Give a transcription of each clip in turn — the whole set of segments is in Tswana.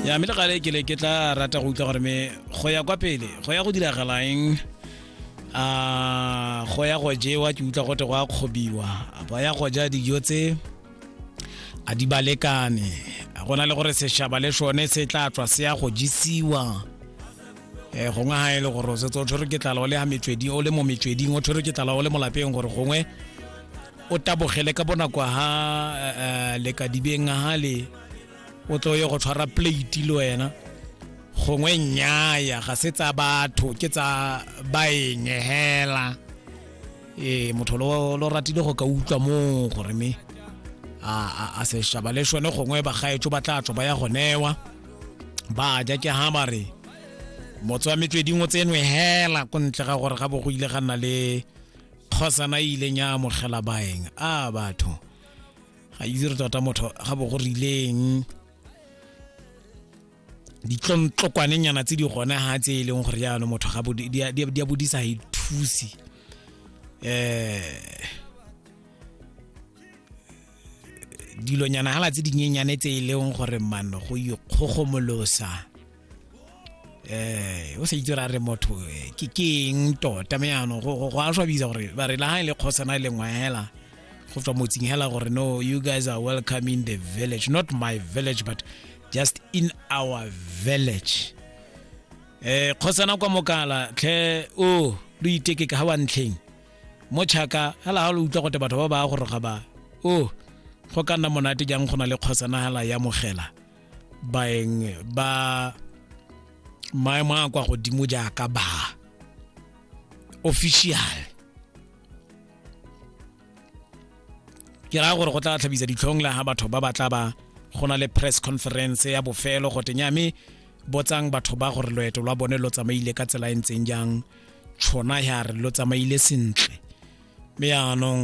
ya mme le gale ke le ke tla rata go utlwa gore me go ya kwa pele go ya go diragalang a go ya go jewa ke utlwa gote go a kgobiwa ba ya go ja dijo tse a di balekane a go na le gore sešaba le sone se tla tswa se ya go jisiwa um gongwe ga e le gore o setse o tshwere ke tlala o le ya metsweding o le mo metsweding o tshwere ke tlala o le mo lapeng gore gongwe o tabogele ka bonako ha eh, le ka dibeng ha le o tlo ye go tshwara plate le wena gongwe nnyaya ga se tsa batho ke tsa baenge hela ee motho lo lo ratile go ka utlwa moo gore me a a- a sešaba le sone gongwe bagaetso ba tla tswa ba ya go newa ba ja ke ha ba re motse wa metsweding o tsenwe hela ko ntle ga gore ga bo go ile ga nna le kgosana e ileng ya amogela baeng a batho ga itse re tota motho ga bo go rileng ditlontlokwanenyana tse di gone ga tse e leng gore jaanong motho ga bo- di a- di a- di a bodisa ga ithusi um dilonyana gala tse dinyenyane tse e leng gore mano go ikgogomolosa eh o se itse ra re motho eh, ke keng tota me ano go go a swabisa gore ba re la ha ile e khosana ile e ngwela go tswa motsing hela gore no you guys are welcome in the village not my village but just in our village eh khosana kwa mokala tlhe o lo iteke ka ha wa ntlheng mo chaka hela ha lo utlwa gote batho ba ba go roga ba o go ka nna monate jang go na le kgosana hela ya mogela baeng ba maemo a kwa godimo jaaka ba official ke raya gore go tla tlhabisa ditlhong la ga batho ba ba tla ba go na le press conference ya bofelo go tenya mme botsang batho ba gore loeto lwa bone lo tsamaile ka tsela e ntseng jang tshona ya re lo tsamaile sentle mme yaanong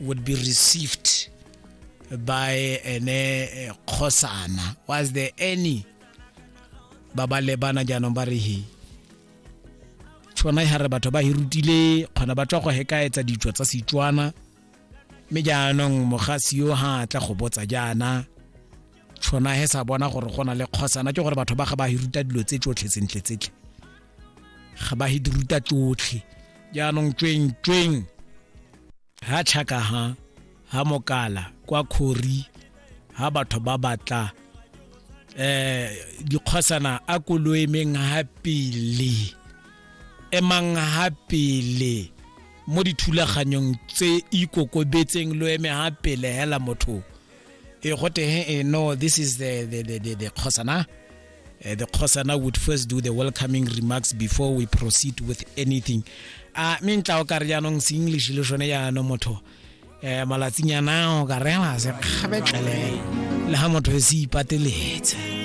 would be received by ene kgosana was there any ba ba lebana jaanong ba re he tshwana e gare batho ba hirutile kgona ba tswa go hekaetsa ditso tsa setswana mme jaanong mogasi yo ga tla go botsa jaana tshona he sa bona gore go na le kgosana ke gore batho ba ga ba hiruta dilo tse tsotlhe tsentle tsetlhe ga ba hiruta tsotlhe jaanong tsweng tsweng ha tšhaka ha ha mokala kwa khori ha batho ba batla eh dikgosana a koloemeng ha pele emang ha pele mo dithulaganyong tse ikokobetseng lo eme ha pele hela motho e go teng e no this is the the the the, the khosana uh, the khosana would first do the welcoming remarks before we proceed with anything a me ntla o kare jaanong se english le sone jaanong motho um malatsinyana o ka rela se kgabetlele le ga motho e se ipateletse